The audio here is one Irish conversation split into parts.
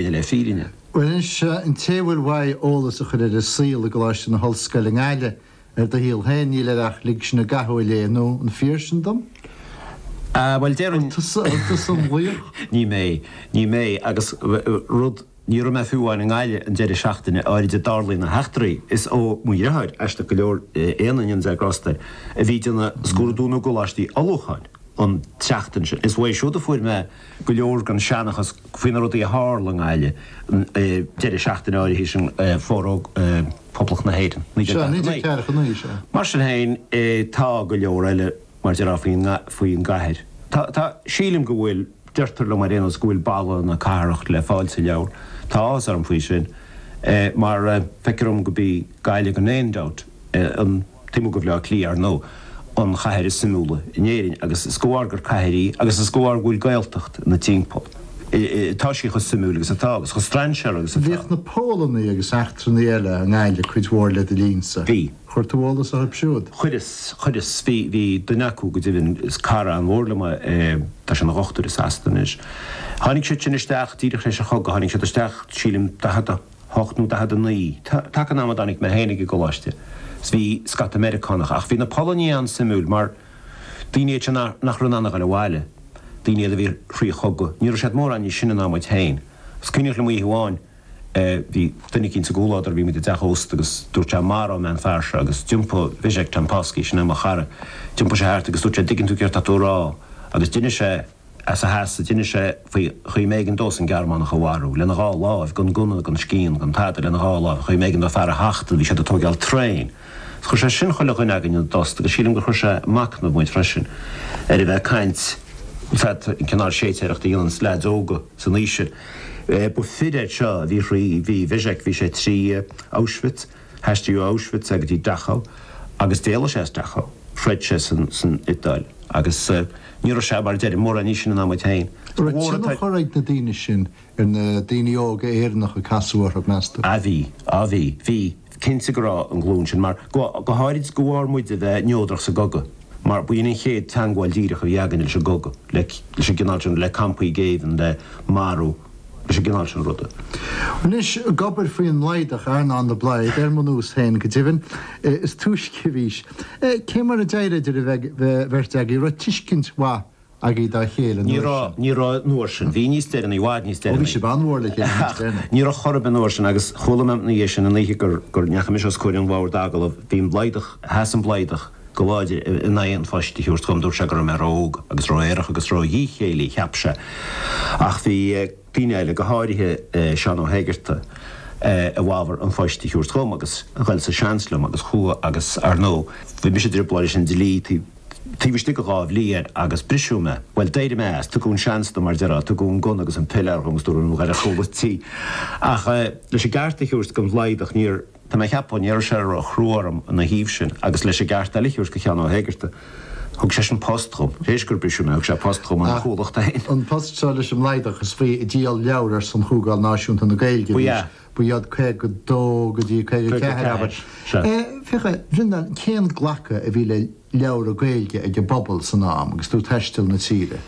B'shin é fírinne. Bhuel anseo an té a bhfuil uaidh eolas a chur ar an saol i gColáiste na hOllscoile i nGaillimh, ar do shaol féin níl air ach Lig Sinn i gCathú a léamh nó an fíor sin dom? Ah bhuel déarfainn. An tusa, an tusa an laoch? Ní mé, ní mé agus rud, ní raibh mé fiú amháin i nGaillimh an deireadh seachtaine áirid a dtarlaíonn na heachtraí is ó mo dhriotháir, aisteach go leor, Éanna, go ndéana Dia grásta air, a bhí ag déanamh scrúdú na gColáistí Ullmhúcháin an tseachtain sin is uaidh siúd a fuair mé go leor den seanchas faoi na rudaí a tharla i nGaillimh an deireadh seachtaine áirithe sin ar fógraíodh Poblacht na hÉireann, 1949. Mar sin féin, tá go leor eile mar a déarfá faoin gcathair. Tá, sílim go bhfuil, deirtear liom ar aon nós go bhfuil baladh na cathrach le fáil sa leabhar. Tá áthas orm faoi sin mar feictear dom gurb í Gaillimh gan aon dabht an. Taobh amuigh de Bhleá Cliath, ar ndóigh, an chathair is suimiúla in Éirinn, agus is de bharr gur cathair í agus is de bharr go bhfuil Gaeltacht ina timpeall atá sí chomh suimiúil agus atá, agus chomh strainséartha agus atá. Bhíodh na Polannaigh agus eachtrannaigh eile i nGaillimh cuid mhór le do linn-sa. Bhí. Chuir tú eolas orthu siúd? Chuireas, chuireas. Bhí, bhí duine acu, go deimhin, is cara an-mhór liom é, tá sé ina dhochtúir i Sasana anois. Tháinig siad sin isteach díreach tar éis an chogaidh, tháinig siad isteach, sílim, daichead a, hocht nó daichead a naoi. Taca an ama a dtáinig mé féin ag an gcoláiste 's bhí scata Meiriceánach, ach bhí na Polannaigh an-suimiúil mar daoine iad seo nach raibh in ann a ghoil abhaile, daoine iad a bhí thrí chogadh. Ní raibh siad mórán níos sine ná muid féin. 'S cuimhneach liom oíche amháin, bhí duine eicínt sa gcomhluadar, bhí muid i dteach ósta agus dúirt sé, Maróidh mé an fear seo, agus d'iompaigh, Vischek, Jampolsky, sin é mo chara, d'iompaigh sé thart agus dúirt sé, dtuigeann tú céard tá tú a rá? Agus d'inis sé. As a sheasamh d'inis sé faoin gcaoi a mb'éigean dósan Gearmánach a mharú lena dhá láimh, gan gunna, gan scian, gan tada, lena dhá láimh, chaoi a mb'éigean dó fear a thachtadh, bhí siad ag tóigeáil traein. Is chuir sé sin chuile dhuine againn ina dtost agus sílim gur chuir sé ag machnamh muid freisin ar a bheith ag caint, fead, an cineál séitéireacht a dhéananns leaids óga san aois sin. Ba fir iad seo a bhí thrí, bhí Wyzek, bhí sé trí Auschwitz, hAistríodh ó Auschwitz é go dtí Dachau agus d'éalaigh sé as Dachau. Throid sé san Iodáil agus ní raibh sé, mar a deirim, mórán níos sine ná muid féin. An raibh tionchar ag na daoine sin ar na daoine óga Éireannacha a casadh orthu, meas tú? Á bhí. Á bhí. Bhí. Cinnte go raibh ar an nglúin sin, mar go háirid de bharr muid a bheith neodrach sa gcogadh, mar ba shin an chéad teangmháil díreach a bhí againne leis an gcogadh, leis an gcineál sin, le campaí géibhinn, le marú. Leis an gcineál sin ruda. Anois, ag obair faoin mBlaghdach, Earnán de Blaghd, ar mo nós féin, go deimhin, is túisce a bhís. Cé mar a d'éirigh idir an bheirt agaibh? Raibh tuiscint mhaith agaibh dá chéile an uair sin? Ní raibh, an uair sin. Bhí níos deireanaí, i bhfad níos deireanaí. Ó, bhí sibh an-mhór le chéile níos deireanaí. Ach, ní raibh chor ar bith an uair sin, agus chuala mé ina dhiaidh sin, an oíche go ndeachaigh mise os comhair an bhoird agallaimh, bhí an Blaghdach, sheas an Blaghdach, Go láidir in aghaidh an phoist a thabhairt dhom dúirt sé go raibh mé ró-óg agus ró-aerach agus ró-dhíchéillí, cheap sé. Ach bhí daoine eile, go háirithe Seán Ó hÉigearta, i bhfabhar an phoist a thabhairt dhom agus ghoil sa seans liom agus chuaigh agus ar ndóigh bhí mise i dtrioblóid leis an dlí taobh istigh de dhá bhliain air agus briseadh mé. Bhuel d'éirigh mé as, tugadh an seans dom mar a deirtear, tugadh an gunna agus an piléar dhom agus dúradh go raibh mé dhorcha go dtí. Ach leis an gceart a thabhairt don Bhlaghdach níor. Tá mé ag ceapadh, ní raibh sé ró-chrua orm ina thaobh sin agus leis an gceart eile a thabhairt do Sheán Ó hÉigearta, thug seisean post dhom, tar éis gur briseadh mé, thug sé post dhom ina chomhlacht féin. An post seo leis an mBlaghdach, is faoi ag díol leabhra ar son Chomhdháil Náisiúnta na Gaeilge a bhí sé, ba iad 52 go dtí 54, abair. Féach a Bhreandáin, cén glacadh a bhí le leabhra Gaeilge ag an bpobal san am agus tú ag taisteal na tíre?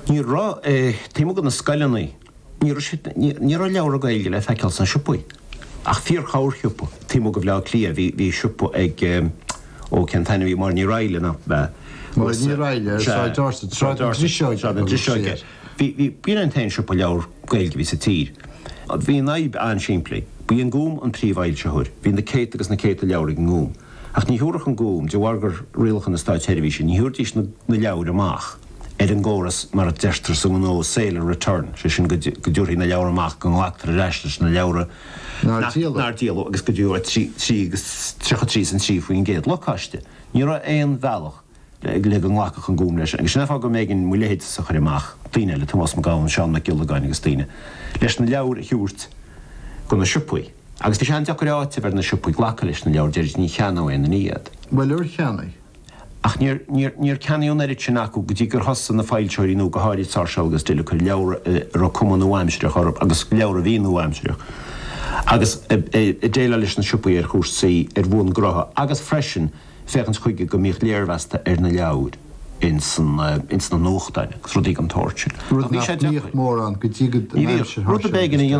Ní raibh, taobh amuigh de na scoileanna. Ní raibh leabhra Gaeilge le feiceáil sna siopaí, ach fíor-chorrshiopa. Taobh amuigh de Bhleá Cliath, bhí siopa ag, ó cén t-ainm a bhí, Máire Ní Raghaillaigh nach b'ea? Máire Ní Raghaillaigh, Sráid Dorset, Sráid na Driseoige. Sráid na Driseoige. Bhí, bhí, b'shin é an t-aon siopa leabhar Gaeilge a bhí sa tír. Bhí an fhadhb an-simplí. Ba í an Gúm an príomhfhoilsitheoir. Bhí na céadta agus na céadta leabhar ag an nGúm. Ach ní thiúrfadh an Gúm, de bharr gur rialacha na Státseirbhíse, ní thiúrfaidís na leabhair amach. ar an gcóras mar a deirtear sa ngnó sale and return, sé sin go dtabharfaí na leabhra amach, go nglactar ar ais leis na leabhra nár díoladh agus go dtí trí agus tríocha trí is aon tríú faoin gcéad lacáiste. Ní raibh aon bhealach le go nglacfadh an Gúm leis agus sin é an fáth go mb'éigin mo leithéidse a chur amach, daoine eile, Tomás Mac Gabhann, Seán Mac Giollagáin agus daoine leis na leabhair a thabhairt go na siopaí. Agus bhí sé an-deacair áiteamh ar na siopaí glacadh leis na leabhair, deir ní cheannódh éinne iad. Bhuel, ar cheannaigh? Ach níor ceannaíodh an oiread sin acu go dtí gur thosaigh na foilsitheoirí nua, go háirid Sáirséal agus Dill, ag cur leabhra a raibh cuma nua-aimsireach orthu agus leabhra a bhí nua-aimsireach. Agus ag déileáil leis na siopaí ar chúrsaí ar bhonn gnótha agus freisin féachaint chuige go mbíodh léirmheasta ar na leabhair ins na nuachtáin agus rudaí den tsórt sin. Rud nach mbíodh mórán go dtí aimsir Sháirséal agus Dill.